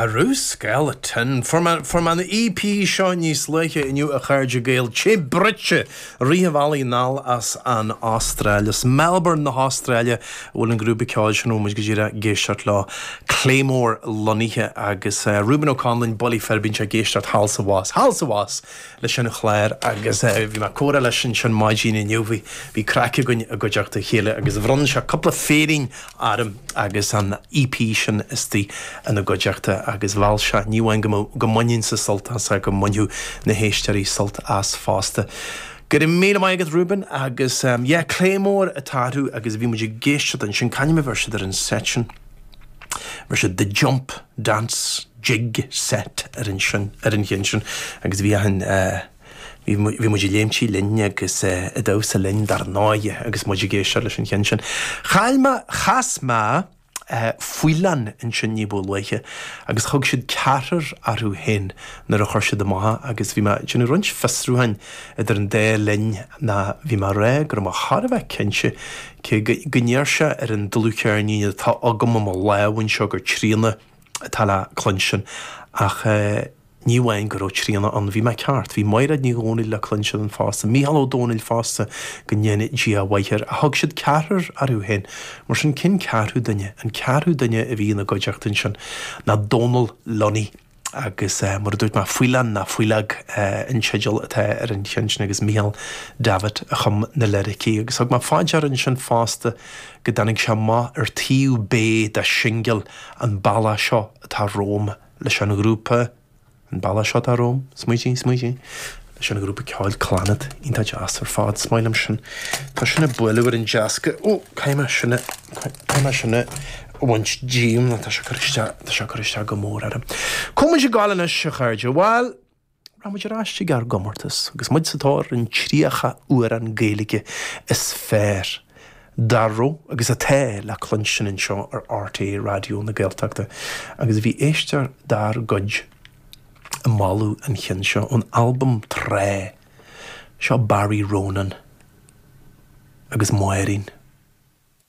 Arú Skeleton! Fuair mé an EP seo níos luaithe inniu a chairde Gael, te bruite i rith an bhealaigh anall as an Astráil. Is i Melbourne na hAstráile a bhfuil an grúpa ceoil sin a raibh muid go díreach ag éisteacht leo, Claymore lonnaithe agus Reuben Ó Conluain, bullaí fir, bíonn sé ag éisteacht thall is abhus, thall is abhus leis an chlár agus bhí mé ag comhrá leis ansin maidin inniu, bhí craic againn i gcuideachta a chéile agus bhronn sé cúpla féirín orm agus an EP sin istoigh ina gcuideachta agus gheall sé ní amháin go mbainfinnse sult as ach go mbainfeadh na héisteoirí sult as fosta. Go raibh míle maith agat Reuben agus yeah Claymore atá orthu agus bhí muid ag éisteacht ansin, c'ainm a bheir siad ar an set sin? Bheir siad The Jump, Dance, Jig Set air sin, ar an cheann sin agus bhí achan eh. Bhí muid ag léimtí linn agus ag damhsa linn dar ndóigh agus muid ag éisteacht leis an cheann sin. Chaill mé, chas mé Faoileán ansin ní ba luaithe agus thug siad Ceathrar orthu féin nuair a chuir siad amach é agus bhí mé ag déanamh roinnt fiosrúcháin idir an dá linn ná bhí mé ag rá go raibh mé thar a bheith cinnte cé go ndeir sé ar an dlúthcheirnín atá agam i mo lámh anseo gur Tríona atá le cluinstin ach Ní amháin go raibh Tríona ann, bhí mé ceart, bhí Maighréad Ní Dhomhnaill le cluinstin ann fosta, Mícheál Ó Domhnaill fosta, go ndéana Dia a mhaith air, ach thug siad Ceathrar orthu féin, mar sin cé an ceathrú duine? An ceathrú duine a bhí ina gcuideachta ansin ná Dónal Lunny agus mar a dúirt mé, Faoileán nó Faoileog an teideal atá ar an cheann sin agus Mícheál Davitt a chum na liricí agus thug mé fá dear ansin fosta go dtáinig sé amach ar taobh B de shingil An Bealach Seo Atá Romham. leis an ghrúpa, An Bealach Seo Atá Romham, smaoitigh, smaoitigh, leis an ghrúpa ceoil Clannad, iontach deas ar fad, is maith liom sin. Tá sin ag bualadh ar an deasc, ó, caithfidh mé sin a, caithfidh mé sin a bhaint díom, tá sé ag cur isteach, tá sé ag cur isteach go mór orm. Cá bhfuil muid ag gabháil anois, a chairde, bhuel, Rachaidh muid ar ais chuig ár gcomórtas agus muid sa tóir ar an 30 amhrán Gaeilge is fearr dá raibh agus atá le cluinstin anseo ar RTÉ Raidió na Gaeltachta agus bhí éisteoir dár gcuid ag moladh an chinn seo ón albam tráth. Seo Barry Ronan agus Máirín.